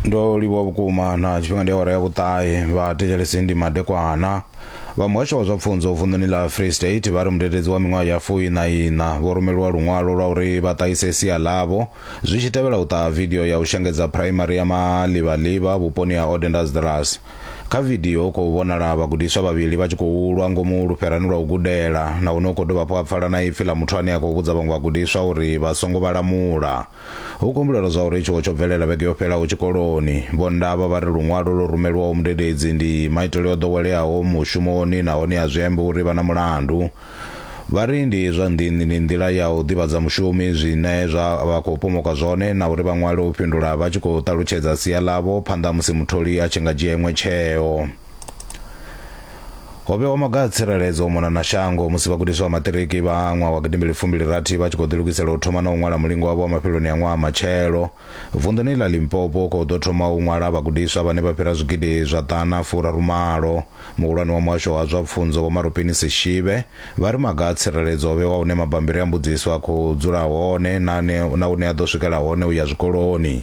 ndo livhuwa vhukuma na tshifhinga ndi awara ya vhuṱahe vha thetshelesi ndi madekwana vha muhasho wa zwa pfunzo vunḓuni ḽa free state vha ri mudededzi wa miṅwaha ya fui na ina vho rumeliwa luṅwalo lwa uri vha ṱahise sia ḽavho zwi tshi tevhela u ṱaha vidio ya u shengedza phuraimari ya malivhaliva vhuponi ha odendasdras kha vidio hu khou vhonala vhagudiswa vhavhili vha tshi khou lwa ngomu lufherani lwa u gudela nahone hu khou dovha hafhu ha pfala na ipfi ḽa muthu ane a khou vhudza vhaṅwe vhagudiswa uri vha songo vhalamula Hu kumbulelwa zwa uri tshiwo tsho bvelela vhege yo fhelaho tshikoloni. Vho Ndaba vha ri luṅwalo lwo rumelwaho mudededzi ndi maitele o ḓoweleaho mushumoni nahone a zwi ambi uri vha na mulandu. Vha ri ndi zwa nḓini ndi nḓila ya u ḓivhadza mushumi zwine zwa vha khou pomoka zwone na uri vha ṅwale u fhindula vha tshi khou ṱalutshedza sia ḽavho phanḓa ha musi mutholi a tshi nga dzhia iṅwe tsheo. ho vhewa maga a tsireledzo u mona na shango musi vhagudiswa vha maṱiriki vha ṅwaha wa gidimbili fumbilirathi vha tshi khou ḓilugisela u thoma na u ṅwala mulingo wavho wa mafheloni a ṅwaha matshelo vunḓuni ḽa limpopo khou ḓo thoma u ṅwala vhagudiswa vhane vha fhira zwigidi zwa ḓana furarumalo muhulwane wa muhasho wa zwa pfunzo vho marupini sishibe vha ri maga a tsireledzo o vhewa hune mabambiri a mbudziso a khou dzula hone na hune a ḓo swikela hone u ya zwikoloni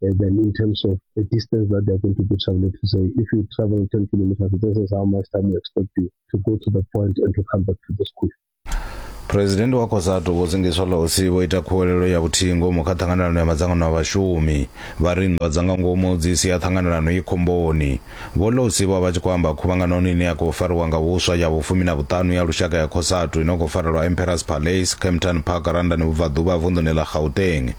And then in terms of the distance that they're going to be traveling to say, if you travel 10 kilometers, this is how much time we expect you to go to the point and to come back to the school. phurezidendi wa cosatu vho zingiswa losi vho ita khuwelelo ya vhuthihi ngomu kha ṱhanganelano ya madzangano a vhashumi vha ri nndwa dza nga ngomu dzi sia ṱhanganelano i khomboni Vho Lousi vho vha vha tshi khou amba khuvhanganoni ine ya khou fariwa nga huswa ya vhufumi na vhuṱanu ya lushaka ya Cosatu ino khou farelwa Emperors Palace, Kempton Park, Randani Vhubvaḓuvha, vunḓuni ḽa Gauteng.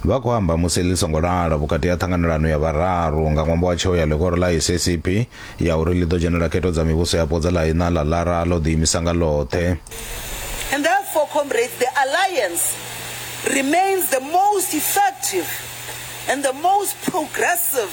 Vha khou amba musi ḽi songo lala vhukati ha ṱhanganelano ya vhararu nga ṅwambo wa tsheo ya ḽihoro ḽa SACP ya uri ḽi ḓo dzhenela khetho dza mivhuso yapo dza ḽa iṋa ḽa Lara ḽo ḓiimisa nga ḽoṱhe. And therefore, comrades, the alliance remains the most effective and the most progressive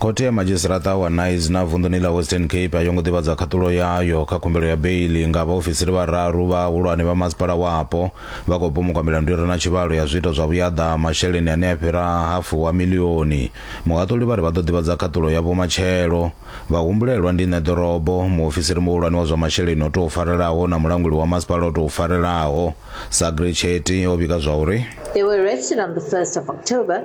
khothe ya madzhisiṱaraṱa wa nice na vunḓuni ḽa western cape a yo ngo ḓivhadza khaṱulo yayo kha khumbelo ya beili nga vhaofisiri vhararu vhahulwane vha masipala wapo vha khou pomokwa milandu i re na tshivhalo ya zwiito zwa vhuyaḓa masheleni ane a fhira hafu wa milioni muhaṱuli vha ri vha ḓo ḓivhadza khaṱulo yavho matshelo vha humbulelwa ndi ṋe ḓorobo muofisiri muhulwane wa zwa masheleni o tou farelaho na mulanguli wa masipala o tou farelaho sagre cheti o vhiga zwa uri They were arrested on the 1st of October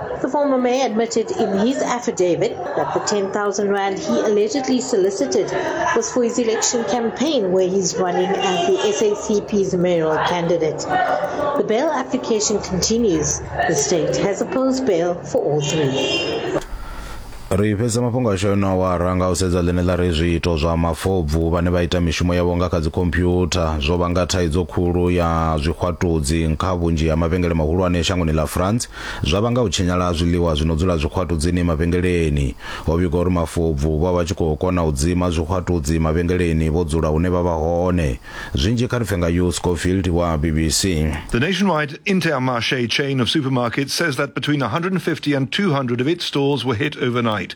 The former mayor admitted in his affidavit that the 10,000 rand he allegedly solicited was for his election campaign where he's running as the SACP's mayoral candidate. The bail application continues. The state has opposed bail for all three. ri fhedza mafhungo ashu yo no wara nga u sedza ḽine ḽa ri zwiito zwa mafobvu vhane vha ita mishumo yavho nga kha dzikhomphyutha zwo vhanga thaidzo khulu ya zwixwatudzi kha vhunzhi ha mavhengele mahulwane shangoni ḽa france zwa vhanga u tshinyala ha zwiḽiwa zwi no dzula zwixwatudzini mavhengeleni. Ho vhigwa uri mafobvu vho vha vha tshi khou kona u dzima zwixwatudzi mavhengeleni vho dzula hune vha vha hone. Zwinzhi kha ri pfe nga Hugh Schofield wa BBC. The nationwide Intermarché chain of supermarkets says that between 150 and 200 of its stores were hit overnight.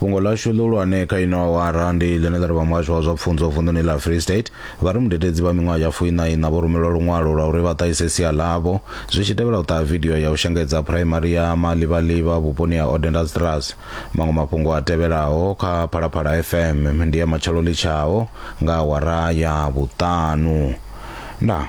fhungo ḽashu ḽihulwane kha ino awara ndi ḽine ḽa ri vha muhasho wa zwa pfunzo vunḓuni ḽa free state vha ri mudededzi vha miṅwaha ya fuiṋaiṋa vho rumelwa luṅwalo lwa uri vha ṱahise sia ḽavho zwi tshi tevhela u ṱaha vidio ya u shengedza phuraimari ya malivhaliva vhuponi ha odendastrass maṅwe mafhungo a tevhelaho kha phalaphala fm ndi ya matshelo litshaho nga awara ya vhuṱanu nda